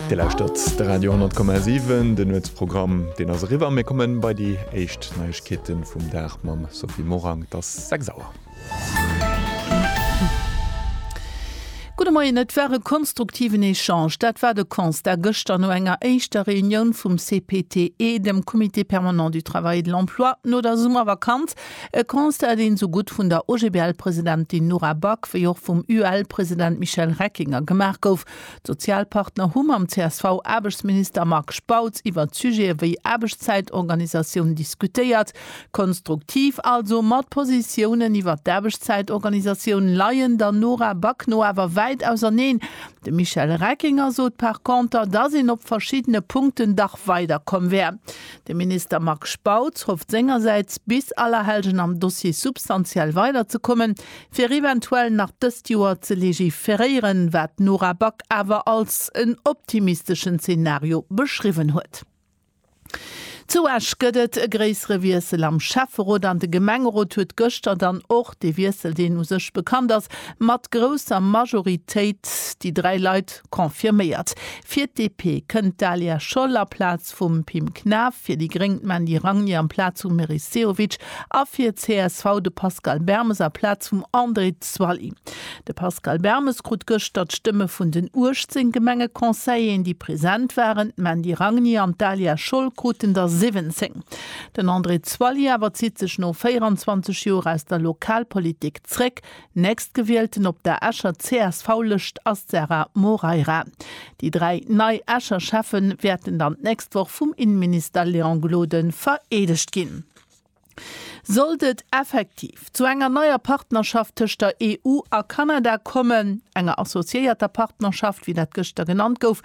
Dir lauschtert de Radio 10,7, den Nuetsprogramm deen ass eriwwer. Mir kommen bei déi éischt Neiegkeeten vum Dag mam Sophie Morang, et ass 6 Auer. Gudde Moien, et war e konstruktiven Echange, dat war de Constat gëschter no enger éischter Reunioun vum CPTE, dem Comité permanent du travail et de l'emploi, no der Summervakanz. E Constat, deen esou gutt vun der OGBL-Presidentin Nora Back wéi och vum UEL-President Michel Reckinger gemaach gouf, D'Sozialpartner hu mam CSV-Aarbechtsminister Marc Spautz iwwert Sujete wéi Aarbechtszäitorganisatioun diskutéiert. Konstruktiv also, ma d'Positiounen iwwert d'Aarbechtszäitorganisatioun leien der Nora Back no awer wäit auserneen. De Michel Reckinger sot par conter, dass een op verschiddene Punkten dach weiderkomm wär. De Minister Marc Spautz hofft sengersäits, bis Allerhellgen am Dossier substantiell weiderzekommen, fir eventuell nach dëst Joer ze legiferéieren, wat d'Nora Back awer als en optimisteschen Zenario beschriwwen huet. Zu Esch gëtt et e gréissere Wiessel am Schäfferot an de Gemengerot huet gëschter dann och dee Wiessel, deen u sech bekannt ass, mat grousser Majoritéit déi dräi Leit confirméiert. Fir d'DP kënnt d'Dalia Scholl aplaz. Post vum Pim Knaff, fir déi gréng d'Mandy Ragné amplaz vum Meris Sehovic a fir csv de Pascal Bermes aplaz vum André Zwally. De Pascal Bermes krut gëschter d'Stëmme vun den 18 Gemengeconseilleren, déi present waren, d'Mandy Ragné an d'Dalia Scholl kruten der 17. Den André Zwally awer zitt sech no 24 Joer aus der Lokalpolitik zréck. Nächstgewielten op der Escher CSV-Lëscht ass d'Sarah Moreira. Déi dräi nei Escher Schäffe wäerten dann d'nächst Woch vum Innenminister Léon Gloden vereedegt ginn. Sollt et effektiv zu enger neier Partnerschaft tëscht der EU a Kanada kommen, enger associéierter Partnerschaft, wéi dat gëschter genannt gouf,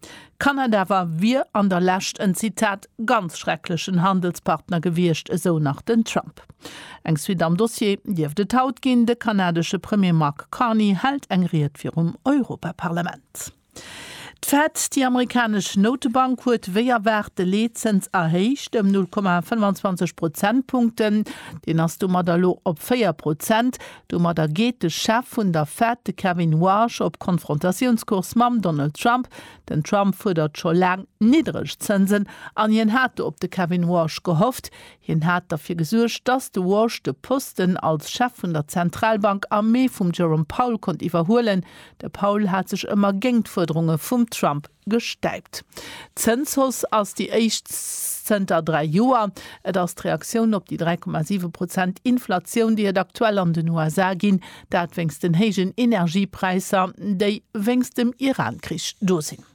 Kanada wa wier an der Lescht en, Zitat, ganz schrecklechen Handelspartner gewiescht, esou nach den Trump. Eng Suite am Dossier dierft et haut ginn, De kanadesche Premier Mark Carney hält eng Ried virum Europaparlament. D'Fed, déi amerikanesch Noutebank, huet wéi erwaart de Leetzëns erhéicht ëm 0,25 Prozentpunkten. Deen ass domat elo op 4 Prozent. Domadder geet de Chef vun der Fed, de Kevin Warsh, op Konfrontatiounscourse mam Donald Trump. Den Trump fuerdert scho laang niddreg Zënsen an hien hat do op de Kevin Warsh gehofft. Hien hat derfir gesuergt, datt de Warsh de Posten als Chef vun der Zentralbank am Mee vum Jerome Powell konnt iwwerhuelen. De Powell hat sech ëmmer géingt d'Fuerderunge vum Trump gestäipt. D'Zënshauss ass déi éischt zënter dräi Joer. Et ass d'Reaktioun op déi 3,7 Prozent Inflatioun, déi et aktuell an den USA ginn, dat wéinst den héijen Energiepräisser, déi wéinst dem Iran-Krich do sinn.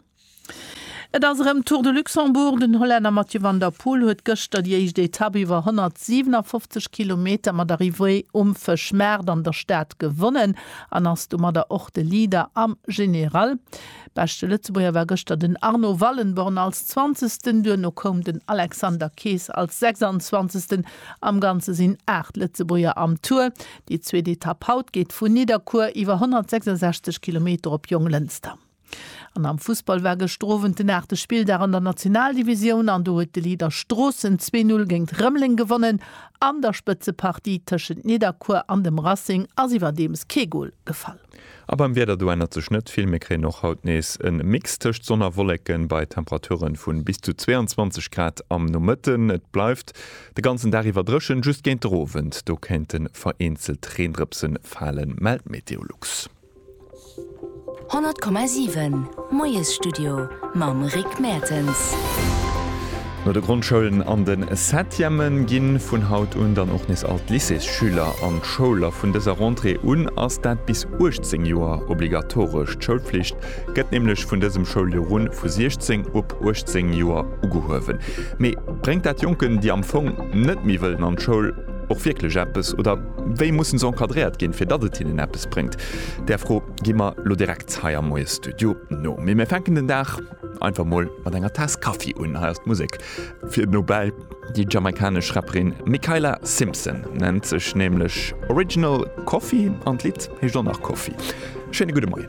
Et ass erëm Tour de Luxembourg. Den Hollänner Mathieu van der Poel huet gëschter déi éischt Etapp iwwer 157 Kilometer mat Arrivée um Fëschmaart an der Stad gewonnen an ass domadder och de Leader am General. Beschte Lëtzebuerger war gëschter den Arno Wallenborn als Zwanzegsten, duerno koum den Alexander Kees als Sechsanzwanzegsten. Am Ganze sinn 8 Lëtzebuerger am Tour. Déi zweet Etapp haut geet vu Nidderkuer iwwer 166 Kilometer op Jonglënster. An am Fussball war gëschter Owend den aachte Spilldag an der Nationaldivisioun an do huet de Leader Stroossen zwee Null géingt Rëmeleng gewonnen. An der Spëtzepartie tëschent Nidderkuer an dem Racing ass iwwerdeems kee Gol gefall. A beim Wieder, do ännert sech net vill. Mir kréien och haut nees e Mix tëscht Sonn a Wolleken bei Temperature vu bis zu 22 Grad am Nomëtten. Et bleift de ganzen Dag iwwer dréchen, just géint de Owend, do kéinte vereenzelt Reendrëpsen falen, mellt Meteolux. 100,7. Moiesstudio mam Rick Mertens. No de Grondschoulen an de Septièmen ginn vun haut un dann och nees all d'Lycéesschüler an d'Schoul. A vun dëser Rentrée un ass dat bis 18 Joer obligatoresch. D'Schoulflicht gëtt nämlech vun dësem Schouljoer un vu 16 op 18 Joer ugehuewen. Mee bréngt dat Jonken, déi am Fong net méi wëllen an d'Schoul, och wierklech eppes? Oder wéi mussen se encadréiert ginn, fir datt et hinnen eppes bréngt? Där Fro Gi mer lo direkt hei am Moie Studio no. Mee mir fänken den Dag einfach mol mat enger Taass Kaffi un. Hei ass d'Musek fir den Nobel. Déi jamaikanesch Rapperin Mikayla Simpson nennt sech nämlech Original Coffee an d'Lidd heescht och nach Coffee. Schéine gudde Moien.